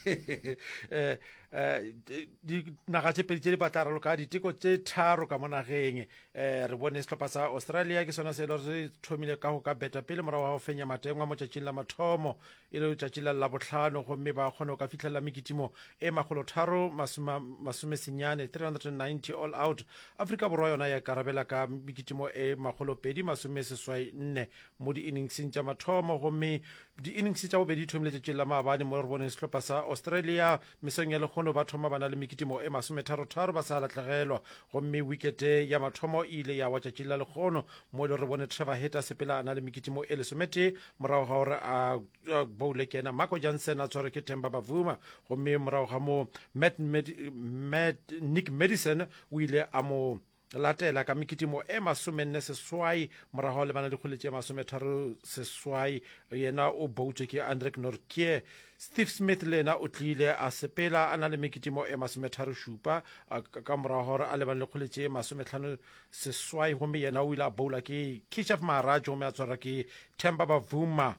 eh, eh, dinaga tse pedi tse di batla raloka diteko tse tharo ka mo nageng um re bone setlhopha sa australia ke sona se e le gore re thomile ka go ka beta pele morago ga go fenya matengwa mo tšatšing la mathomo e le tšatši la labotlhano gomme ba kgone go ka fitlhelela mekitimo e magolo tharo masome senyane 390 all out aforika borwa yona ya karabela ka mekitimo e magolo pedi masome seswai nne mo di-inningseng tša mathomo gomme Di-innings tša bobedi di thomile tšatšing la maabane mo re boneng sehlopha sa Australia mesong ya lekgono ba thoma ba na le mekitimo e masometharotharo ba sa lahlegelwa gomme wikete ya mathomo e ile ya wa tšatšing la lekgono mo e le re bone Trevor Heta sepela a na le mekitimo e lesometee morago ga gore a boule kena Marco Jansen a tshwarwe ke Temba Bavuma gomme morago ga moo Matt, Matt, Nick Madison o ile a mo Latela ka mekitimo e masomenne seswai morago le bana dikgole tše masometharo seswai yena o boutše ke Andrek Nortje. Steve Smith le yena o tlile a sepela a na le mekitimo e masometharo šupa ka morago gore a lebane le kgole tše masometlhano seswai gomme yena o ile a boula ke Kishev Maharaj gomme a tshwarwa ke Temba Bavuma.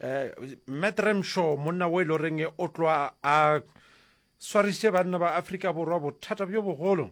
Um, eh, Matt Ramshaw monna wo e le goreng o tloa a swarišitše banna ba Afrika Borwa bothata bjo bogolo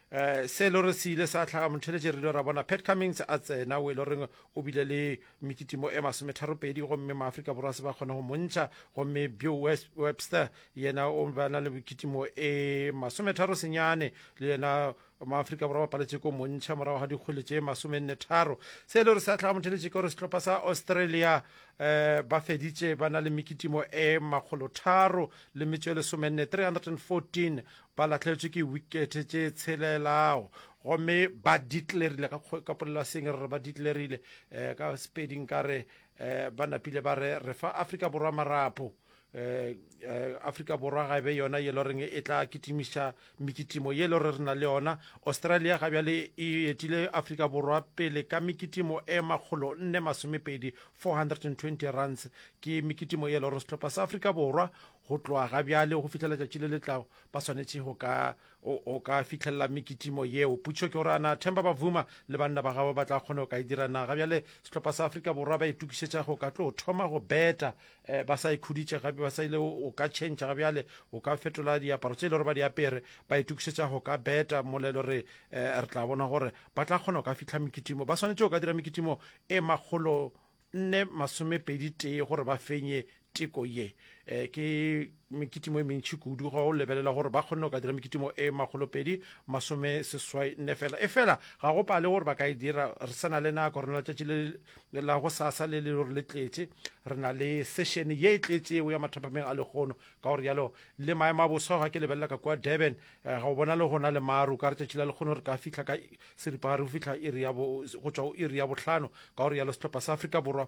Eh, se e le gore se ile sa tlhaga motheletše re ile ra bona pat cummings a tsena o e le goreng o bile le mekitimo e masometharopedi gomme maaforika borwa se ba kgone go montšha gomme bill webster yena o ba na le mekitimo e masometharo senyane le yena maaforika borwa ba paletše ko montšha morago ga dikgwele tše masomenne tharo se e le gore se a tlhaga motheletše ke gore setlhopha sa australia um ba feditše ba na le mekitimo e makgolotharo le metšo e lesomenne 314 Ba lahletšwe ke wikethe tše tshelela gomme ba ditlerile ka, ka polelaseng re re ba ditlerile eh, ka sepedi nka re eh, ba napile ba re re fa Afrika Borwa marapo eh, eh, Afrika Borwa ga e be yona ye loreng e tla kitimiša mekitimo ye lore re na le yona Australia ga bjale e etile Afrika Borwa pele ka mekitimo e makgolo nne masomepedi 420 runs ke mekitimo ye lore sehlopha sa Afrika Borwa Go tloga ga bjale go fihla letšatši le le tlago, ba swanetše go ka, o, o ka fihlella mekitimo yeo. Putšo ke gore, a na Themba Bavuma le banna ba gabo ba tla kgona go ka e dira na? Ga bjale sehlopha sa Afrika Borwa ba itokišetša go ka tlo thoma go beta, eh, ba sa ikhuditše gape, ba sa ile o, o ka tšhentšha ga bjale, o ka fetola diaparo tše e le gore ba di apere, ba itokišetša go ka beta molelo. Re, eh, re tla bona gore ba tla kgona go ka fihla mekitimo. Ba swanetše go ka dira mekitimo e makgolo nne masomepedi tee gore ba fenye teko ye eh, ke mekitimo e mentšhi kudu ga o lebelela gore ba kgonne go ka dira mekitimo e magolopedi masome seswai nne fela e fela ga go pale gore ba ka e dira re sena le nako re na letšatši le la go sasa le le gore le tletše re na le sešene ye e tletšego ya mathapameng a lekgono ka gore yalo le maemo a bosa ga ke lebelela ka kua durban eh, ga o bona le gona le maru ka re tšatši la lekgono re ka fitlha ka seripagare go fihla iri ya go tšwa go iri ya bohlano ka gore yalo sehlopha sa afrika borwa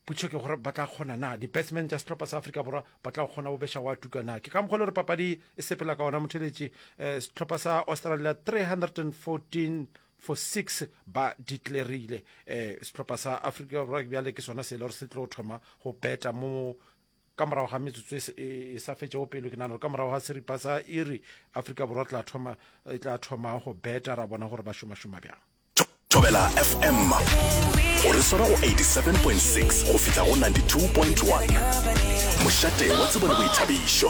putšho ke gore ba tla kgona na di-batsman tša sehlopha sa afrika borwa ba tla kgona go beša wa tuka na ke ka mokgwa le gore papadi e sepela ka ona motheletši um sehlopha sa australia 314 for six ba declarile um sehlopha sa afrika borwa bjale ke sona se e le gore se tlo thoma go beta mo ka morago ga metsotso e, e, e sa fetšego pelo ke nagana gore ka morago ga seripa sa iri afrika borwa tla thoma e tla thoma go beta ra bona gore ba šomašoma bjang tobela fm o re swara go 87.6 go fihla go 92.1 mošate wa tsebo le boithabišo